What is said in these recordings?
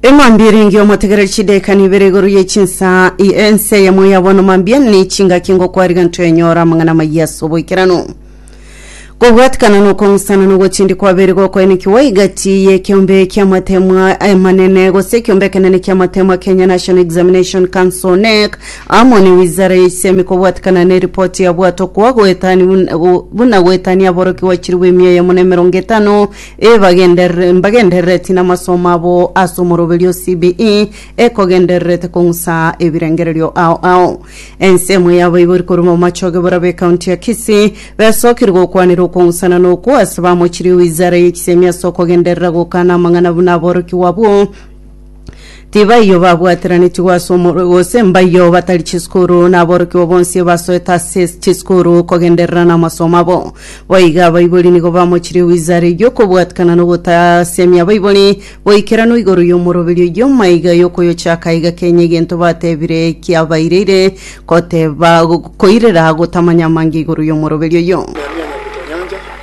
eng'ombi erenge omotegereri chidaekani ibere igoro ye chinsa i- ense eyemo yabono mambia ne chingaki ngokwariga ntoenyora amang'ana amayia ase oboikeranu kobwatikana na okong'usana na ogochendia kwabeire gokoenekiwa egati ye ekeombe kia amateemwa amanene gose ekeombe ekenene kia amateemwa Kenya National Examination Council, KNEC, amo ne wizara ya ensemi kobwatikana ne eripoti yabwatwa kwa goetani buna goetania aborokigwa chilifu emia eyemo na emerongo etano Ebagenderere mbagenderereti namasomo abo ase omoroberio o CBE ekogendererete kong'usa ebirengererio ao ao. Ensemo y'abaibori korwa Bomachoge borabwo ekaunti ya Kisii besokirie gokwanera okong'usana na okwo ase bamochirie wizara ye chisemi ase okogenderera gokana amang'ana buna aborokigwa abwo Tibaiyo babwateranetigwe ase omorwe gose mbaiyo batari chisukuru na aborokigwa bonsi basoete ase chisukuru kogenderera n'amasomo abo. Boigo abaibori nigo bamochirie wizara eyio kobwatikana n'ogotasemia abaibori boikeranu igoro y'omoroberi oyio maiga y'okoyochaka iga kenya egento batebire kiabaireire koteba koirera gotamanya amange igoro y'omoroberi oyio. Nehemia Nyabuto Nyanja,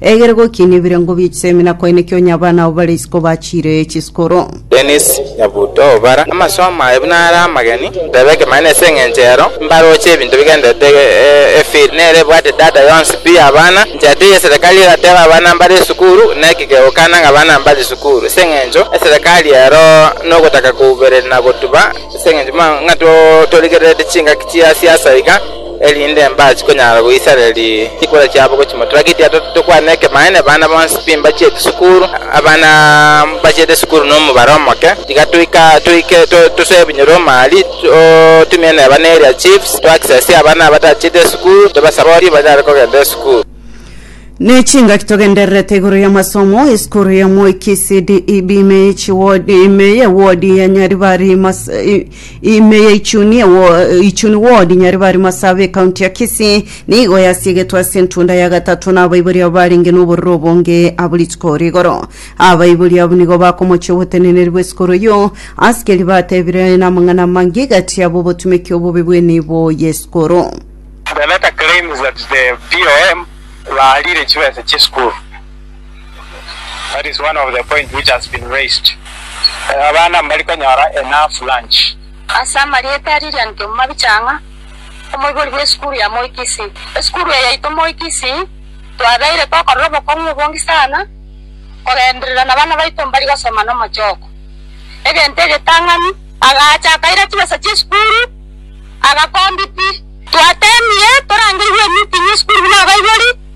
Egere gokiina ebirengo bie chisemina kwaine kionya abana abo bare isiko bachiire chisukuru. Dennis Nyabuto, Bara amasomo aye buna are amageni, tebe ekemanyererio ase eng'encho ero mbaroche ebinto bigendererete efiri nere ebwate data yonsi pi y'abana. Enchera teiyo eserekari egateba abana mbare esukuru neki kegokana ng'a abana mbare esukuru ase eng'encho eserekari ero nogotaka koubereria na gotuba ase eng'encho buna ng'a torigererete chingaki chia siasa iga. erinde mbaase konyara goisareria chikura chiabo gochia motura. Gekiagera to- tokwane ekemanyererio, abana bonsi timbachiete sukuru, abana mbachiete sukuru nomobaro omoke. Tiga toika- toike to- tosoe ebinyoro omari, totumie neba ne area chiefs, to access abana abatachiete esukuru, tobasabe ori banyare kogenda esukuru. Nechingaki togendererete igoro y'amasomo esukuru y'omoiki CDEB ime ye chiwodi ime ye wodi ya Nyaribari Mas- i- Ime ya Ichuni wo, Ichuni ward Nyaribari Masabe ekaunti ya Kisii nigo yasiegetwe ase entunda ya gatato na abaibori abo barenge noborero obonge abo rituko ore igoro. Abaibori abwo nigo bakomochia oboteneneri bw'esukuru eyio. Asikeri batebire namang'ana amange gati abo obotumeki obobe bw'enibo y'esukuru. The letter claims that the POM baarire chibesa chi'esukuru. That is one of the point which has been raised. Eh, Abana mbari konyora enough lunch. Ase amarieta a Lilian Kemumabhi Chang'a, omoibori bw'esukuru ya Moi Kisii. Esukuru eye yaito Moi Kisii twabeire tokorera obokong'u obonge sana kogenderera nabana baito mbari gosoma nomochoko. Egento egetang'ani, agacha akaira chibesa chi'esukuru, agakombiti. Twateemire torangerigwe emeeting y'esukuru buna abaibori.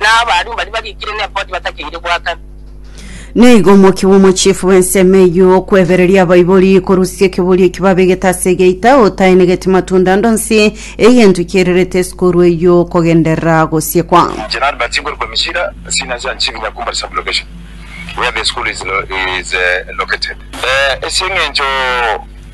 na abaria mbaria barikire neboti batakeire goakana. Naigo omokia bw'omochiefu bw'ensemo eyio okwebereria abaibori korusia ekeburia eki babegete ase egeita otaenegeti matunda ande onsi, egento kiererete esukuru eyio kogenderera gosiekwa. In general, but siguru kwa Mishira, sina nsia nchini Nyakumbari sub-location where the school is located. Ase eng'encho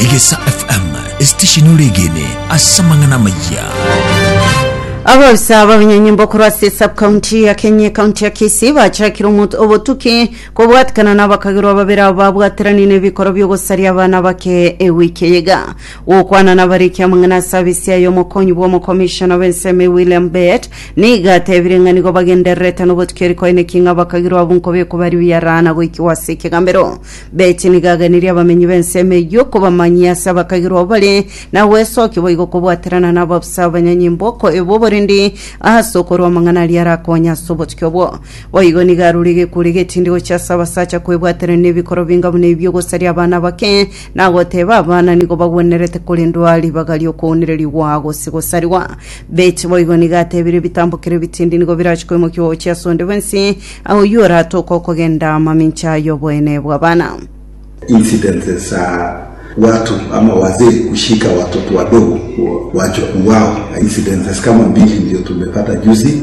Egesa FM esitesheni oregene ase amang'ana amayia. Abafisa b'abanyenyimbo korwa ase subcounty ya Kenya ekaunti ya Kisii bachakire omot- obotuki kobwatikana na abakagerwa babere abo babwateranirie nebikoro biogosaria abana bake ewiki eyega Gokwana nabariki amang'ana ase abisia aya omokonyi bw'omokomishona bw'ensemo William Bett nigo atebirie ng'a nigo bagendererete nobotukia erikoineki ng'a bakagirwa abwo nkobekwa baria biaraa na goikiwa ase ekegambero. Bett nigo agenirie abamenyi b'ensemo eyio kobamanyia ase abakagirwa abwo bare na gwesokia boigo kobwaterana nababusa abanyanye mboko ebo oborendi ase okorua amang'ana aria arakonye ase obotukia obwo. Boigo nigo arure egekweri egetindi gochia ase abasacha kwebwaterania nebikoro binga buna ebio gosaria abana abake Nagoteeba abana nigo bagwenerete korendwa ribaga ri'okounererigwa gose gosarigwa. Beti boigo nigo atebirie ebitambokero ebitindi nigo birachie koimokia ogochia ase onde bwensi, aye oyio oratoke okogenda amamincha y'oboene bw'abana. Incidences za watu ama wazee kushika watoto wadogo kuwachukua wao, incidences kama mbili ndio tumepata juzi.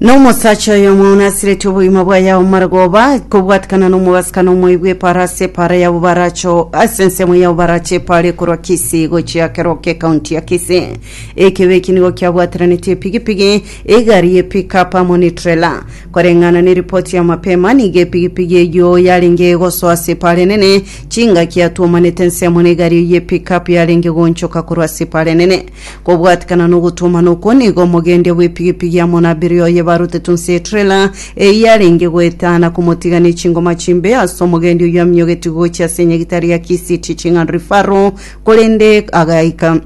Nomosacha oyomo onasireti obogima bwaye ao maragoba kobwatikana nomogasikana omoibu eparasi epara yabo baracho ase ensemo yabo barache epara ekorwa kisi gochia keroke ekaunti ya kisi ekebe eki nigo kiabwatiraneti epigipigi egari ye pickup amo ne trela koreng'ana ne ripoti ya mapema nigo epigipigi eyo yarenge egosoa ase epara enene chingaki yatuomanete ensemo ne egari ye pickup yarenge gonchoka korwa ase epara enene Kobwatikana nogotuomana okwo nigo omogendia bw'epigipigi amo na abiria oye barutetwe inse y'etrela eyio arenge goetana komotiga ne chingoma chimbe ase omogendia oyio aminyogetie gochia ase enyagitari ya Kisiti ching'ando rifaro korende agaika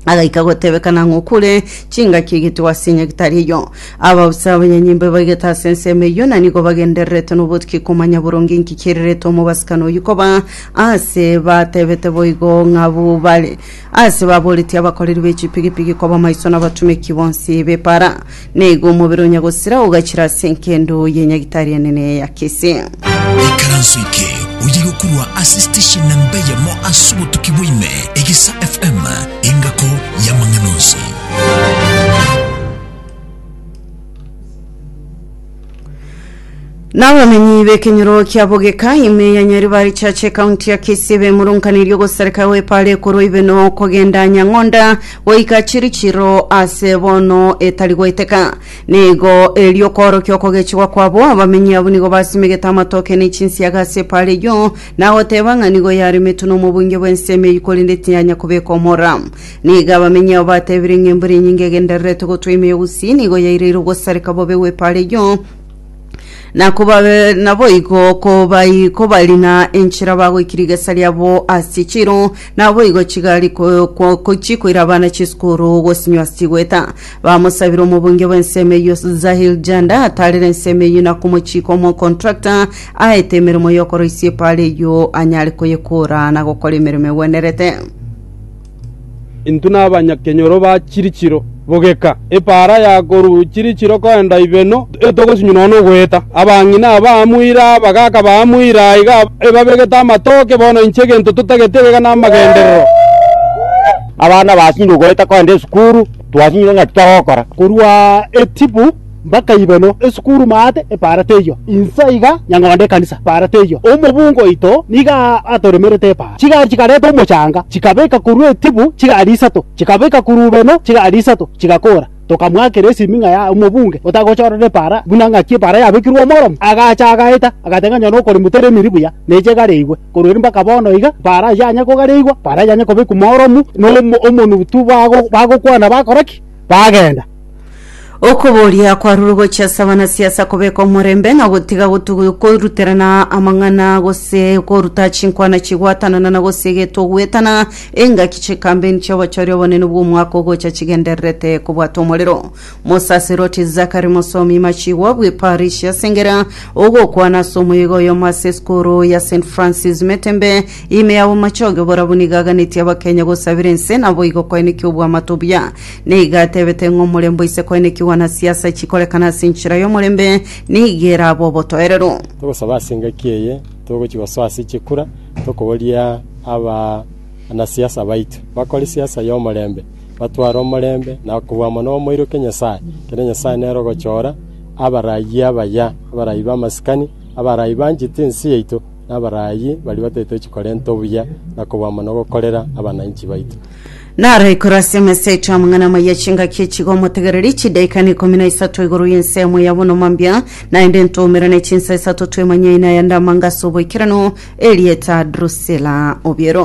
agaika gotebekana ng'a okure chingaki egetigwa ase enyagitari eyio. Ababusa abanyanyimbo ebaigete ase ensemo eyio na nigo bagendererete nobotuki komanya boronge inki kirirete omobasibkani oyio koba, aase batebete boigo ng'abwo bare Ase baboretie abakoreri be chipigipigi koba maiso n'abatomeki bonsi b'epaara, na igo omobere onya gosira ogachira ase enkendo ye nyagitari enene ya Kisii. Ikaranso eke oye gokurwa ase station namba eyemo ase obotuki bwa ime, Egisa FM, engako y'amang'ana onsi. Nabamenyi b'ekenyoro kia Bogeka ime ya Nyaribari Church ekaunti ya Kisii bemurunkaneiri ogosareka gw'epaara ekorwa ibe nokogenda Nyang'onda goika Chirichiro ase bono etari goeteka. Nigo erio okoorokia okogechigwa kwabo, abamenyi abwo nigo basimegete amatoke ne chinsiaga ase epaara eyio, na goteeba ng'a nigo yaremetwe nomobuinge bw'ensemo eyio korende tiyanya kobeka omora. Nigo abamenyi ao batebirie ng'a embura enyinge egendererete gotwa ime y'ogusii nigo yaireire ogosareka bobe gw'epaara eyio, na kobabe naboigo kobai kobarina enchera bagoikire igesa riabo ase chiro, naboigo chigari ko, ko, ko chikoira abana chisukuru gosinywa ase chigweta. Bamosabire omobunge bw'ensemo eyio Zahir Janda ataarere ensemo eyio na komochiika omocontractor aete emeremo y'okoroisia epaara eyio anyare koyekora na gokora emeremo egwenerete. Intwe nabanyakenyoro ba chirichiro, bogeka epaara ya korwa chirichiro koenda Ibeno, etogosinywa nonya nogoeta. Abang'ina aba amoira, abagaaka ba amoira aiga ebabegete amatoke, bono inche egento totagete egega namagenderero. Abana basinyire ogoeta koenda esukuru, twasinyire ng'aki togokora. Korwa Etibu. Mbakayiba no esukuru maate epaara teiyo, insa iga nyang'onda ekanisa epaara teiyo. Omobungu oito nigo atoremerete epaara. Chigari chikareta omochanga, chikabeka korwa etibu chigari isato, chikabeka korwa ubeno chigari isato, chigakora. Tokamwakera esimi ng'a ya omobunge otagochorora epaara buna ng'aki epaara yabekirwe omoromo. Agacha agaeta, agateba ng'a nyora okorimo teremiri buya, neche egareigwe. Korwa ere mbaka bono iga, epaara ayio yanya kogareigwa, epaara yanya kobekwa omoromu, na omonutu bagokwana bakora ki? Bagenda. Okoboria kwarure gochia ase abanasiasa kobeka omorembe ng'a gotiga gotu- koruterana amang'ana gose koruta chinkwana chigwatanana na gose getoguetana engaki chikambeni chia obochori obonene bw'omwaka ogocha chigendererete kobwata omorero. Mosaserdoti Zachary Mosomi Machigwa bw'eparish ya Sengera ogokwana ase omoyega oyomo ase esukuru ya St Francis Metembe ime ya obomachoge oborabwo nigo aganetie abakenya gosabera ense naboigo koenekia obwamato buya Nigo atebete ng'a omorembe oise koenekigwa na siasa chikorekana ase enchera y'omorembe nigo erabe obotoereru. Togosaba ase engaki eye togochia gosoa ase chikura tokoboria abanasiasa baito bakore siasa y'omorembe, batware omorembe na kobua mono bamoiroke Nyasae, kere Nyasae nere ogochora abarayi abaya, abarayi b'amasikani, abarayi banchete ense yaito, na abarayi baria bataetochi korenta obuya na kobua mono gokorera abananchi baito. Naro ekurasia emeseito amang'ana amaya chingaki echigo omotegereri chidaika na ikomi na isato igoro y'ensemo ya bonoma mbia, naende ntoomera ne chinsa isato twemanyaine aya ndamanga ase oboikeranu, erieta Drusila obiero.